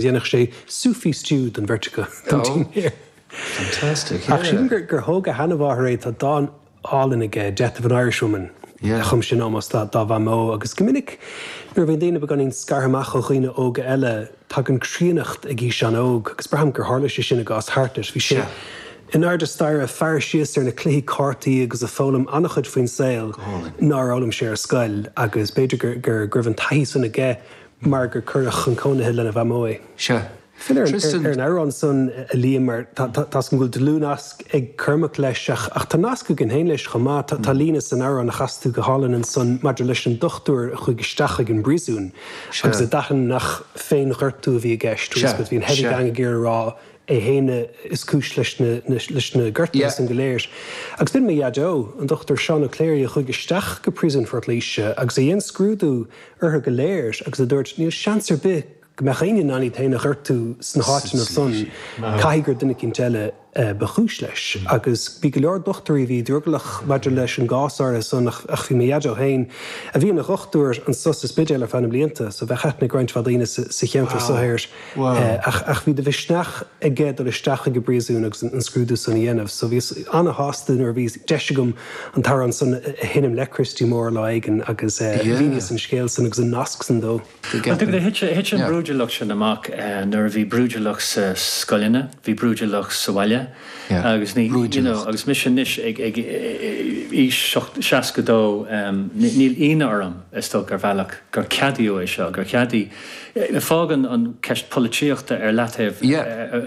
dhéanfadh sé sloppy stew den bheirt acu don dinnéar. Ach sílim gur thóg a sheanamháthair é, tá dán álainn aige, Death of an Irishwoman, a chum sé in ómós dá mhamó. Agus go minic nuair a bhíonn daoine beagáinín scartha amach ó dhaoine óga eile, tagann críonnacht ag aois ana-óg, agus braithim gur tharla sé sin i gcás Hartnett. Bhí sé in airde staire ag faire síos ar na cluichí cártaí agus ag foghlaim an-chuid faoin saol nár fhoghlaim sé ar scoil, agus b'fhéidir go raibh an taithí san aige mar gur cuireadh chun cónaithe lena mhamó é. Sea. Fill a Tristan ar an amhrán san, a Liam, mar tá a fhios agam go bhfuil dlúthnasc ag Cormac leis, ach tá nasc againn féin leis chomh maith. Tá líne san amhrán a chas tú go hálainn ansan maidir leis an dochtúir a chuaigh isteach chuig an bpríosún agus a d'aithin nach féinghortú a bhí i gceist, Sea. Bhí an heavy gang ag iarraidh a rá é féin is cúis leis na gortuithe san go léir. Agus b'in mo Dhaideo, an Dochtúir Seán Ó Cléirigh, a chuaigh isteach go príosún Phort Laoise agus a dhein scrúdú orthu go léir agus a dúirt, 'Níl seans ar bith go mbeadh éinne in ann iad féin a ghortú sna háiteanna san, caithfidh gur duine eicínt eile ba chúis leis. Agus bhí go leor dochtúirí a bhí drogallach maidir leis an gcás áirithe san ach bhí mo Dhaideo féin, a bhí ina dhochtúir anso sa Spidéal ar feadh na mblianta, so bheadh aithne ag roinnt mhaith daoine sa cheantar so air. Ach bhí de mhisneach aige dul isteach chuig an bpríosún agus an scrúdú san a dhéanamh. So bhíos ana-shásta nuair a bhí deis agam an t-amhrán san a sheinm le Christy Moore lá éigin agus mhíníos an scéal san agus an nasc san dó. Bhuel, tuigim, thit an bhrúidiúlacht sin amach nuair a bhí brúidiúlacht sa scoileanna, bhí brúidiúlacht sa bhaile agus ní, you know, agus mise anois ag aois seasca dó, níl ionadh orm, is dócha, ar bhealach, gur ceadaíodh é seo, gur cheadaigh. Fágaim an ceist polaitíochta ar leataobh,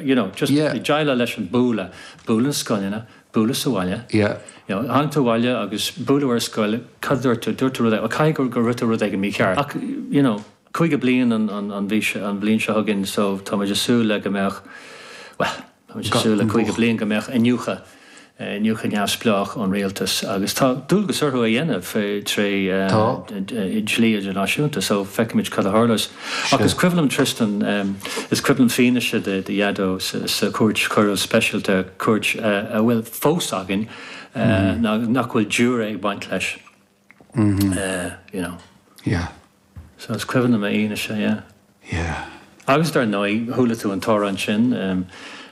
you know, just ag déileáil leis an bualadh, bualadh na scoileanna, bualadh sa bhaile, you know, tháinig tú abhaile agus buaileadh thú ar scoil, cad a dúirt tú, dúirt tú rud éigin, well caithfidh gur gur ndúirt tú rud éigin mícheart ach, you know, caoga bliain an an an mhí seo an bhliain seo chugainn so tá muid ag súil le go mbeadh, well. Tá muid ag súil le 50 bliain go mbeadh iniúchadh iniúchadh neamhspleách ón Rialtas agus tá dualgas orthu é a dhéanamh tré dhlí idirnáisiúnta so feicfimid cad a tharlós. Ach is cuimhin liom Tristan, is cuimhin liom fianaise do Dhaideo sa chúirt choiriúil speisialta, cúirt a bhfuil fós againn, nach bhfuil giúiré ag baint leis. eh, you know. Yeah. So is cuimhin liom a fhianaise, yeah. Yeah. Agus dar ndóigh, chuala tú an t-amhrán sin em,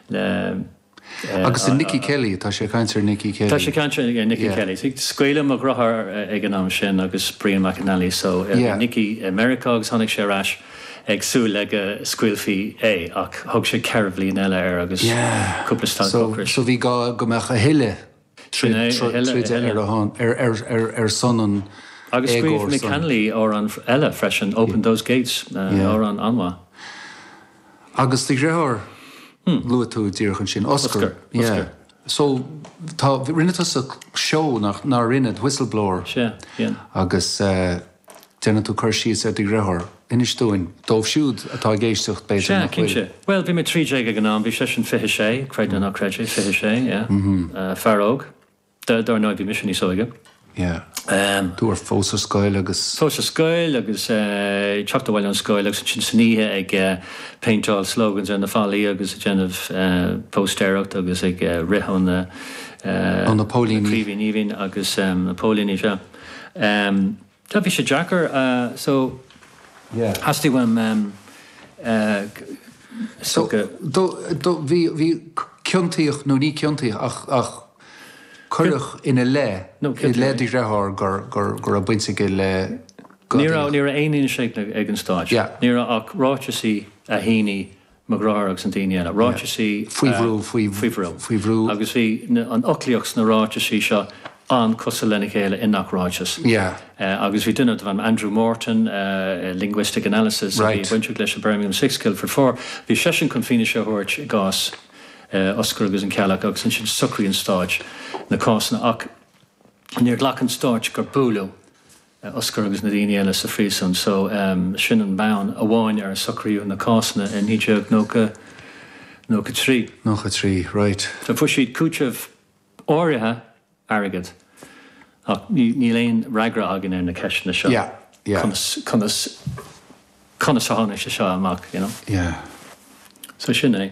le eh, Agus is é Nicky Kelly, tá sé ag caint ar Nicky Kelly. Tá sé ag caint ar Nicky yeah. Kelly. So, scaoileadh mo dheartháir eh, ag an am sin agus Brian McNally, so eh, yeah. Nicky i Meiriceá agus tháinig sé ar ais ag súil le go scaoilfí é ach thug sé ceithre bhliain eile air agus yeah. cúpla stad so, so bhí gá go mbeadh a thuilleadh tríd a thuilleadh ar son an éagóra san. Agus scríobh Mick Hanly amhrán eile freisin, Open Those Gates, amhrán an-mhaith. Agus do dheartháir, luaigh tú díreach ansin, Oscar. Oscar. So, tá, rinne tusa seó, nach, nár rinne, Whistleblower. Sea, yeah. Agus. Déanann tú cur síos ar do dheartháir. Inis dúinn, dóibh siúd atá ag éisteacht, b'fhéidir, Sea, nach bhfuil. cinnte. Bhuel, bhí mé trí déag ag an am, bhí seisean fiche sé, creid nó ná creid é, fiche sé, yeah. Fear óg. Dár ndóigh, bhí mise níos óige. Yeah. Tú fós ar scoil agus. Fós ar scoil agus ag teacht abhaile ón scoil agus ansin san oíche ag péinteáil slogans ar na fallaí agus ag déanamh póstaeireacht agus ag rith ó na. Ó na póilíní. Craoibhín aoibhinn agus na póilíní, sea. Sea, bhí sé deacair. So, yeah, theastaigh uaim go. Bhí ciontaíodh, nó ní ciontaíodh ach cuireadh ina leith, i leith do dhearthár go raibh baint aige le. Ní raibh aon fhianaise ag an Stát. Ní raibh ach ráiteasaí a shínigh mo dheartháir agus na daoine eile. Ráiteasaí faoi bhrú, faoi bhrú, faoi bhrú. Agus bhí an fhoclaíocht sna ráiteasaí seo an-cosúil lena chéile i ngach ráiteas. Agus bhí duine darb ainm Andrew Morton, linguistic analysis, a bhí bainteach leis an Birmingham Six, Guildford Four, bhí seisean chun fianaise a thabhairt i gcás Oscair agus an Ceallach agus ansin shocraigh an Stát na cásanna. Ach níor ghlac an Stát gur buaileadh. Oscar agus na daoine eile sa phríosún so, sin an bonn amháin ar a socraíodh na cásanna i 1993. 93, raight. So fuair siad cúiteamh áirithe airgid ach níl aon fhreagra againn ar na ceisteanna seo, Yeah, yeah. conas, conas, conas a tháinig sé seo amach, you know. Yeah. So sin é.